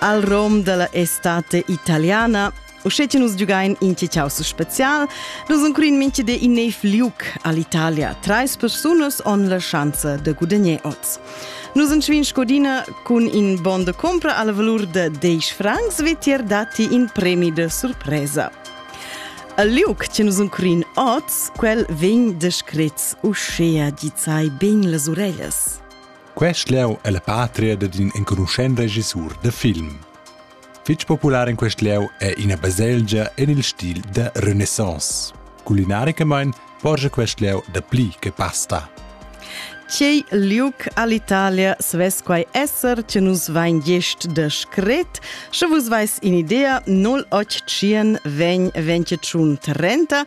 al rom della estate italiana. Usce che nus giugain in Ciao special, nus incluin minche de in neiv liuc all'Italia. Treis persunas on la chance de gudagner oz. Nus incvin Scodina cun in bon de compra alla valur de 10 francs vetier dati in premi de surpresa. Al liuc che nus incluin oz, quel vegn descrets uscea gizai ben las orellas. Quest lieu è la patria dad in enconuschent regissur da film. Fitg popular in quest lieu è ina baselgia en il stil da Renaissance. Culinaricamain porscha quest lieu dapli che pasta. Tgei liug all'Italia svess quai esser che nus vain gest de scret, sche vus vais in idea 081 vegn 21 30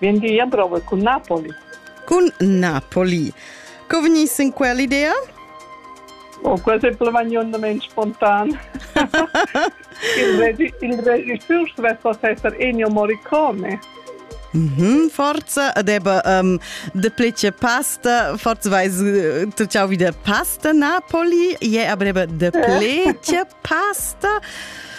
Vien gia prova cun Napoli. Cun Napoli. Co vegnis in quell'idea? Oh, quasi plavanionament spontan. il, il regisseur svessa esser Ennio Morricone. Mm -hmm, forza, aber um, de plece pasta, forza weiß, äh, tu ciao wieder pasta Napoli, je yeah, aber de plece pasta.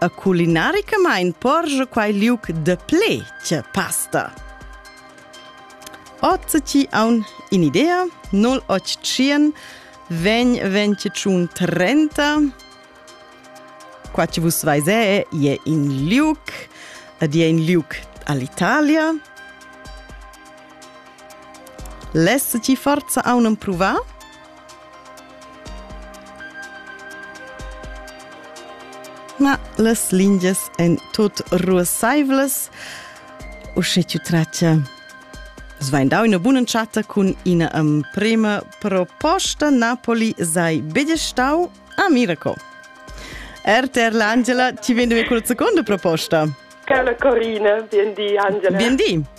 E culinaricamain porscha quai liug da pled pasta. Oz ti aun in'idea, 081 vegn 25 30 qua ci vus vais è je in liuc ed je in liuc all'Italia Less ti forza aunen pruvar? Na, las lingias èn tut ruassaivlas. Uschè tu tratga. Svein dau ina buna chatta cun ina emprema proposta. Napoli sei bedestau a Miraco. RTR l'Angela, ti vedi con seconda proposta. Carla Corina, bien di Angela. Bien di.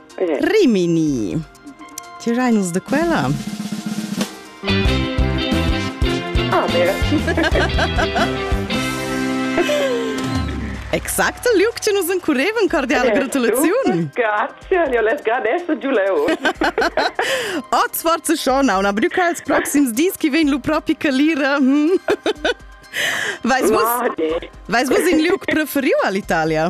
Rimini. Tirai nus de quella? Ah, vera. Exact il liuc che nus encurevan cordiale gratulaziun. Grazie, io les gradesso giù leu. Ot sforza schona una brüca als proxims dis che vegn lu propi calira. Hm? Vais vus, vais vus in liuc preferiu all'Italia?